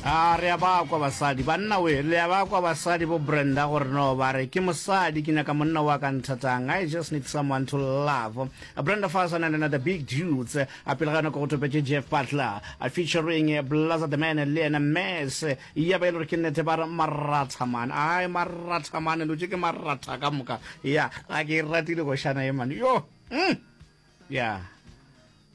a re a ba kwa basadi banna we le a ba kwa basadi bo brenda gore no ba re ke mosadi ke nyaka monna wa ka nthatang i just need someone to love brenda fason and another big dudes a pele ga nako go topetše jeff butler a featuring blaza the man le ena mes ya ba e le gore ke nnete ba re marathaman ai marathaman lo tše ke maratha ka moka ya a ke e ratile gošana ye mane yo mm. ya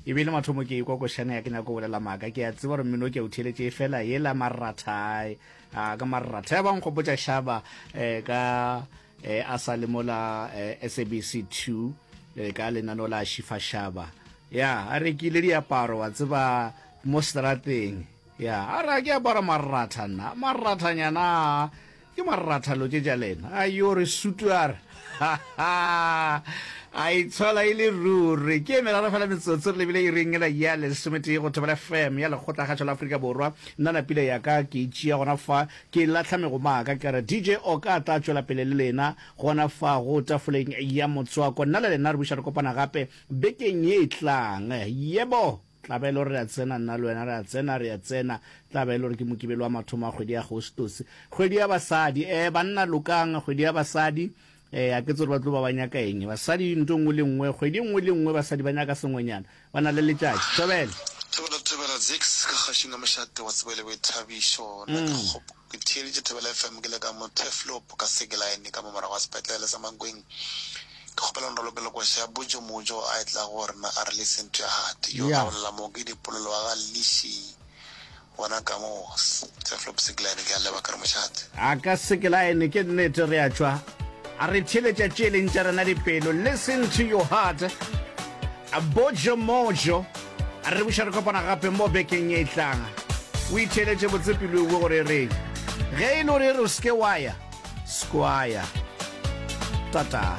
e bile mathomo ke ikwa košana ya ke nyako bolela maaka ke a tseba gore mmino ke o theletše e fela e la marratha a ka marratha ya bang gopotša shaba eh, ka eh, a sa le mola eh, sabc 2 eh, ka lenano la shifa shaba ya a rekile diaparo wa tseba mo strateng Ya, a re a ke apara marratha nna, marrathanyana a, ke marratha lo tše tša lena. A yo re sutu a re, Ha, ha, a itshola e le ruri. Ke e meraro fela metsotso re lebile iring ela ya lesometee go Thobela FM ya Lekgotlakgašo la Afrika Borwa. Nna na pila ya ka ke e tšea gona fa, ke e lahla megoma a ka, ke re, DJ Oka a tla tšwela pele le lena gona fago tafoleng ya motswako. Nna le lena re buša re kopana gape bekeng ye e tlang. Yebo! Tla ba e le gore re a tsena, nna le wena re a tsena, re a tsena. Tla ba e le gore ke Mokibelo wa mathomo a kgwedi ya Agostose. Kgwedi ya basadi. Eh, banna lokang, kgwedi ya basadi. Eh, ga ke tse gore ba tlo ba ba nyaka eng. Basadi nto nngwe le nngwe, kgwedi nngwe le nngwe basadi ba nyaka sengwenyana. Ba na le letšatši. Thobela! Thobela, thobela, Zix, ka kgašo na mošate wa tsebo e le boithabišo. Nna ke kgopo. Ke theeleditše Thobela FM ke le ka mo Turfloop ka Sekeline ka mo morago ga sepetlele sa Mankweng. Ke kgopela o nrolopele le koša ya Bojo Mojo a etla go rena a re listen to your heart. Yo a bolela mo ke Dipolelo wa ga Lishi bona ka mo Turfloop Sekeline ke a leba ke re mošate. A ka Sekeline ke nnete re a tšwa a re theeletša tše e leng tša rena dipelo listen to your heart Bojo Mojo. A re buša re kopana gape mo bekeng e tlang. O itheeletše botse pelo ewe gore e reng. Ge e le gore e re o seke wa ya, skwaya. Tataa.